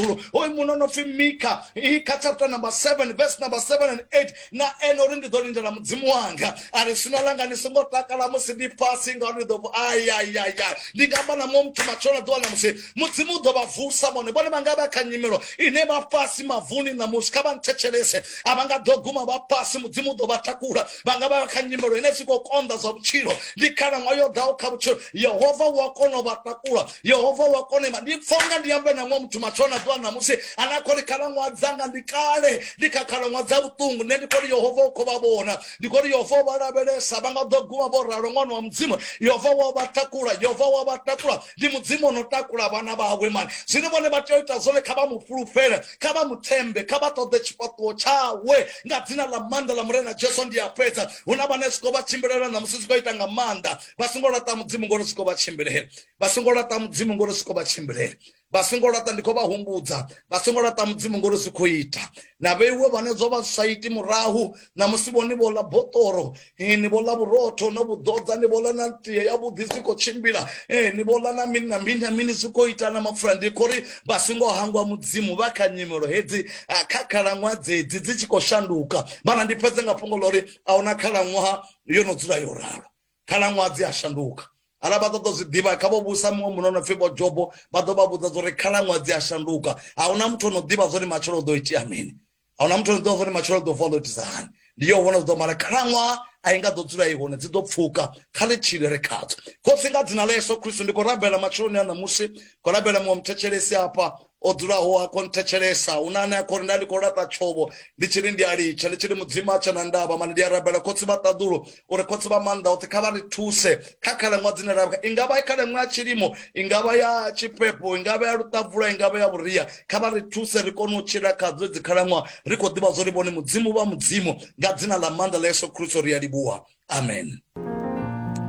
dzulo hoyu muno no pfi mika ika chapter number 7 verse number 7 and 8 na ene uri ndi ḓo lindela mudzimu wanga a ri swina langa ni songo takala musi ndi fhasi ngauri ni ḓo ayayaya ndi nga amba na muṅwe muthu matshelo na ḓuvha namusi mudzimu u ḓo vha vusa vhone vhone vha nga vha kha nyimelo ine vha fhasi mavuni namusi kha vha nthetshelese a vha nga ḓo guma vha fhasi mudzimu u ḓo vha takula vha nga vha kha nyimelo ine si khou konḓa zwa vhutshilo ndi khalaṅwaha yo ḓaho kha vhutshilo yehova u a kona u vha takula yehova wa kona ima ndi pfa unga ndi ambe na muṅwe muthu matsho na ḓuvha ṋamusi ane a khou ri khalaṅwaha dzanga ndi kale ndi kha khalaṅwaha dza vhuṱungu nṋe ndi khou ri yehova u khou vha vhona ndi khou ri yehova vha lavhelesa vha nga ḓo guma vho ralo ṅwana wa mudzimu yehova wa vha takula yehova wa vha takula ndi mudzimu ono takula vhana vhawe mani zwine vhone vha tea u ita zwone kha vha mu fhulufhele kha vha mu thembe kha vha ṱoḓe tshifhaṱuwo tshawe nga dzina ḽa maanḓa ḽa murena jesu ndi a fhedza hu na vhane zwi khou vha tshimbilela ṋamusi zwi khou ita nga maanḓa vha songo laṱa mudzimu ngori siko vha tshimbilele vha songo laṱa mudzimu ngori siko vha tshimbilele vha songo laṱa ndi khou vha humbudza vha songo laṱa mudzimu ngori zwi khou ita na vheiwe vhane zwo vha sa iti murahu na musi vhoni vho ḽa botoro ni vho ḽa vhurotho no vhuḓodza ni vho ḽa na tie ya vhuḓi zwi khou tshimbila ni vho ḽa na mini na mini na mini zwi khou ita na mapfura ndi khou ri vha songo hangwa mudzimu vha kha nyimelo hedzi kha khalaṅwaha dzedzi dzi tshi khou shanduka vhana ndi fhedze nga fhungo ḽa uri a huna khalaṅwaha yo no dzula yo ralo khalaṅwaha dzi a shanduka hala vha ṱoḓa zwi ḓivha kha vho vhusa muṅwe muno no pfhi vho jobo vha ḓo vha vhudza zwa uri khalaṅwaha dzi a shanduka a huna muthu ono ḓivha zwori matshelo ḓo itea mini a huna muthu ono ḓivha zwori matshelo ḓo vuwa ḓo itisa hani ndi yo vhona zwi ḓo mara khalaṅwaha a i nga ḓo dzula i hone dzi ḓo pfuka kha ḽi tshile ri khadzo khotsi nga dzina ḽa yesu khristu ndi khou rabela matsheloni a ṋamusi khou rabela muṅwe muthetshelesi afha o dzulaho a khou nthetshelesa hu na ane a khou ri nda ndi khou laṱa tshovho ndi tshi ri ndi a litsha ndi tshi ri mudzimu a tshe na ndavha mane ndi a rabela khotsi vha ṱaḓulo uri khotsi vha maanḓa oṱhe kha vha ri thuse kha khalaṅwaha dzine ra i nga vha i khalaṅwaha ya tshilimo i nga vha ya tshifhefho i nga vha ya luṱavula i nga vha ya vhuria kha vha ri thuse ri kone u tshila khadzo dzi khalaṅwaha ri khou ḓivha zwo ri vhone mudzimu vha mudzimu nga dzina ḽa maanḓa ḽa yesu khristo ri a livhuwa amen